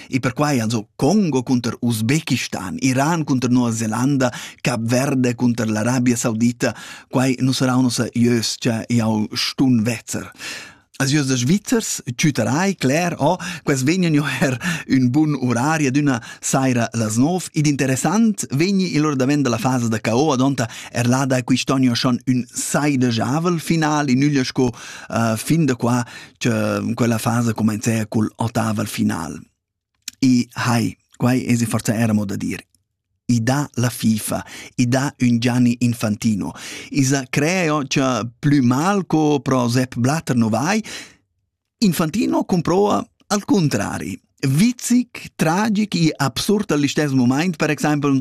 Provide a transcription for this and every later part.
E perquai also Congo cunter Usbekistan, Iran cunter Nuova Zelanda, Cap Verde cunter l'Arabia Saudita, quai nu sarà nossa ieus cha jau stun vezzer. Als ieus da Svizzers, tüterai, cler, oh, quels vegnan jo er ün bun urari ad üna saira las nov, ed interessant vegni il or davent dalla fasa da KO, adonta er lada quist'ogno schon ün sai de javel final, in üglia sco uh, fin da qua, che quella fasa comencea cul ottaval final. E hai, quai es forza era moda dir. I dà la FIFA, i dà un Gianni Infantino, isa creo che plü mal co pro Sepp Blatter no vai, Infantino comproa al contrari. Vizic, tragic e absurd all'istes moment, per example,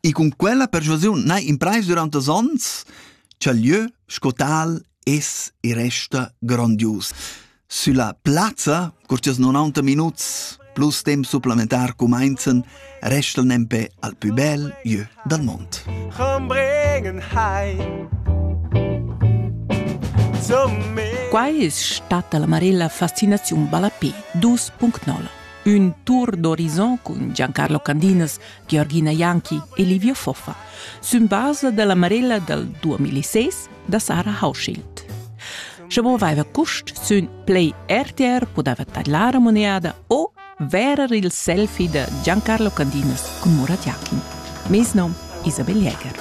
E cun quella persuasiun n'hai imprais durant els onns cha'l lieu sco tal es e resta grondius. Sülla plazza, cur chi's 90 minuts plus temp supplementar cumainzan, restan nempe al pü bel jö dal mond. Come bringen heim Quai es stata la Marella Fascinaziun Ballapé 2.0. Un tour d'horizon cun Giancarlo Candinas, Georgina Janki e Livio Foffa, sün basa della Marella dal 2006 da Sarah Hauschild. Sche voveva cust sün Play RTR podeva tadlar a moneada o verer il selfie da Giancarlo Candinas con Murat Jakin. Mes nom Isabel Jäger.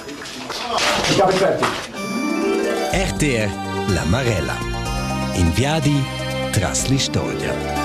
RTR La Marella. In viadi tras l'istorgia.